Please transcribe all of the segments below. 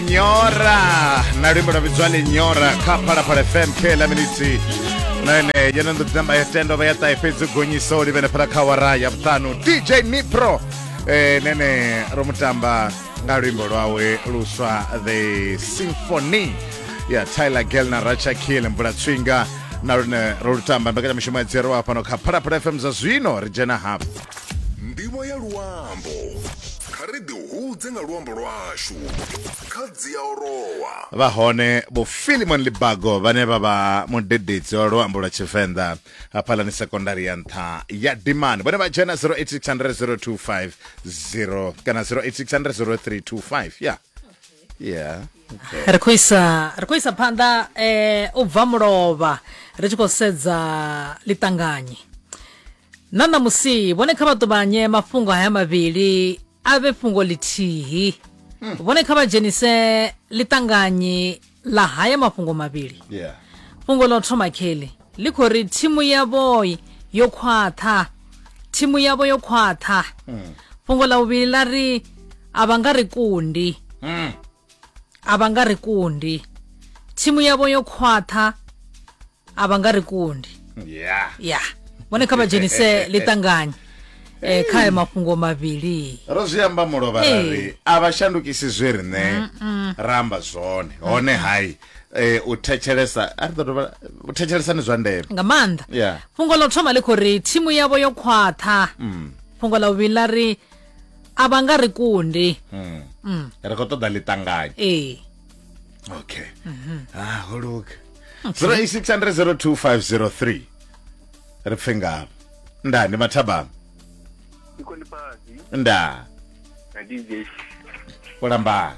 nyora na luimbo lwa vhidzwa linyora kha phalaphala fm kla miniti na ene yene ndo tamba ya tendo vha ya ṱahe fhedzi gonyisa o livhene fhala kha wara ya vhuṱanu dj nipro eh, nene ro mu tamba nga luimbo lwawe luswa the symphony ya tyler gel na racha kill mvula tswinga na lune ro lu tamba mbekanyamishumo ya dzero wa fhano kha phalaphala fm zwa zwino ri dzhena hafhu Ndivho ya luambo. Kha ri ḓihudze nga luambo lwashu. Kha Dziaorowa. Vha hone Vho Philemon Libago vhane vha vha mudededzi wa luambo lwa Tshivenḓa hafhaḽani sekondari ya nṱha ya Dimani. Vhone vha dzhena 08600025 kana 08600325 ya yeah okay. ri khou isa ri khou isa phanḓa eh u bva mulovha ri tshi khou sedza ḽiṱanganyi na ṋamusi vhone kha vha ṱuvhanye mafhungo haya mavhili a vhe fhungo ḽithihi hmm. vhone kha vha dzhenise ḽiṱanganyi ḽa haya mafhungo mavhili yeah. fhungo ḽa u thoma kheli ḽi khou ri thimu yavho yo khwaṱha thimu yavho yo khwaṱha mm. fhungo ḽa vhuvhili ḽa ri a vha nga ri kundi mm. a vha nga ri kundi thimu yavho yo khwaṱha a vha nga ri kundi ya yeah. vhone kha vha dzhenise ḽiṱanganye eh, kha ayo mafhungo mavhili ro zwi amba mulovha ra ri a vha shandukisi zwe riṋe ra amba zwone hone hai eh u thetshelesa a ri ḓo dovha u thetshelesa ni zwa ndeme nga maanḓa yeah. fhungo ḽa u thoma ḽi khou ri thimu yavho yo khwaṱha mm. fhungo ḽa vhuvhili ḽa ri a vha nga ri kundi mm. mm. ri khou ṱoḓa ḽiṱanganyo ee okay mm -hmm. ah, ho luga okay. 08600253 ri pfe ngavho nda ndi mathabama nda ndi lambani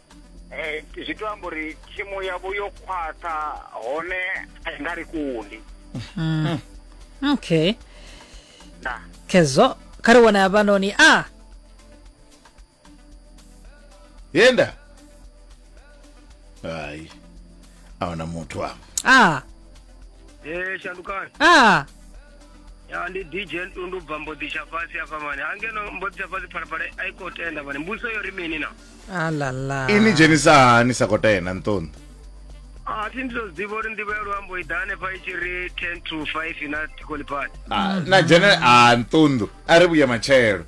eh, zwi to amba uri thimu yavho yo khwaṱha hone a i nga ri kundi mm. okay na kezo kha ri wana hafhanoni a yenda hayi a huna muthu a a e shandukani a ya ndi dj ntundu bva mboḓi tsha fhasi afha mani hangeno mboḓi tsha fhasi phalaphala a i khou tenda mani mbuso yo ri mini na ini dzhenisa hani sa khou tena nṱondo a thi ndi to zwiḓivha uri ndivho ya luambo i ḓa hanefha i tshi ri ten to five na tikolipad na dzhene a nṱunḓu a ri vhuye matshelo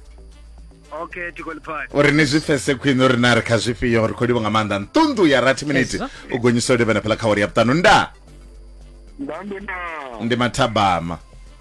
okay tikolipad uri ni zwi fese khwine uri na ri kha zwifhio ri khou livho nga maanḓa nṱunḓu ya rathi miniti u gonyisa u livhana pheḽa kha wari ya vhuṱanu nda ndi mathabama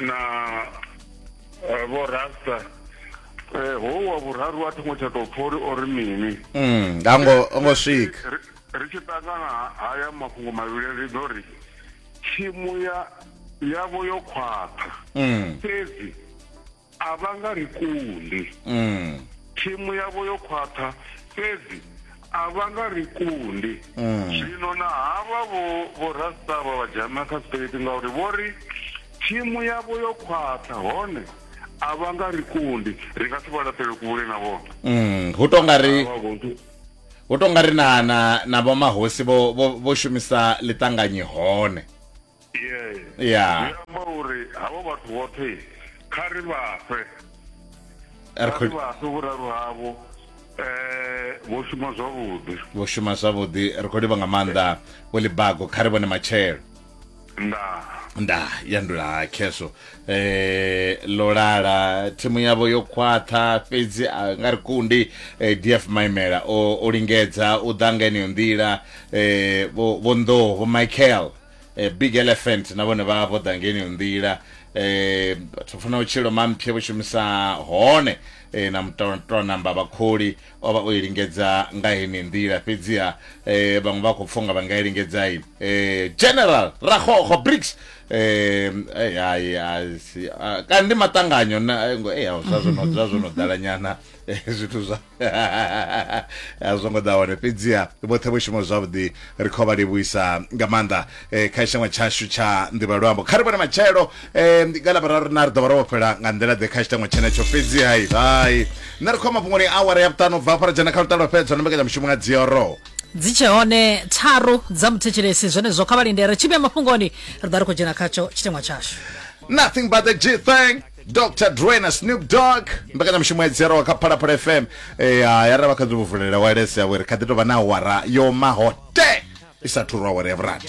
na eh, vho rasta eh, ho wa vhuraru a thongo tsha tou pfha uri o ri mini Mm, nga ngo ngo swika Ri- ri tshi ṱangana haya mafhungo mavhili ri ḓo ri thimu ya yavho yo khwaṱha Mm, fhedzi a vha nga ri kundi mm. thimu yavho yo khwaṱha fhedzi a vha nga ri kundi mm. zwino na havha vho vho rasta vha vha dzhama kha sipeleti ngauri vho ri thimu yavho yo khwaṱha hone a vha nga ri kundi ri nga si vha laṱele kule na vhona mm, hu to nga ri hu to nga ri na na na vho mahosi vho vho shumisa ḽiṱanganyi hone ya zwi amba uri havho vhathu vhoṱhe kha ri vhafhe kha ri vhafhe vhuraru havho eh vho shuma zwavhuḓi vho shuma zwavhuḓi ri khou livha nga maanḓa vho libago kha ri vhone matshelo nda nda yandula khezwo eh lolala thimu yavho yo khwaṱha fhedzi a nga ri kundi eh, df maimela o, o lingedza u ḓa nga eneyo nḓila eh, vho vho nḓoho vho michael eh, big elephant na vhone vha vho ḓa ngeni nḓila eh vhathu funa u tshilo mamphe vho shumisa hone eh, na mutoto namba vhakholi o vha o lingedza nga hene nḓila fhedzi ha eh vhaṅwe vha khou pfunga vha nga i lingedza i eh general rakhokho bricks eh ai ai si- ah, kandi matanganyo na eh zwa zwo no zwa zwo no ḓala nyana eh, zwithu zwa a zwo ngo ḓa hone fhedziha vhoṱhe vho shuma zwavhuḓi ri khou vha livhuisa nga maanḓa eh, kha tshangwa tshashu tsha nḓivha luambo kha ri vhone matshelo eh, nga lavhararu na ri ḓo vha ro vhofhela nga nḓila ḓe kha tshitangwa tshenetsho fhedziha hai hai nṋe ri khou mafhungoni awara ya vhuṱanu bva fara dzhena kha lutalo fhedzwa na mbekanyamushumo nga dzioro dzi tshe hone tharu dza muthetshelesi zwenezwo kha vha lindele tshivhe mafhungoni ri ḓa ri khou dzhena khatsho tshitengwa tshashu nothing but the g thing dr dre na snoop dog mbekanyamushumo ya dzhiaraho kha phalaphala fm eh, ya ya ra vha kha ḓi vulela wales ya were kha ḓi tou vha na awara yo maho te i sa thurwa awara ya vhurathi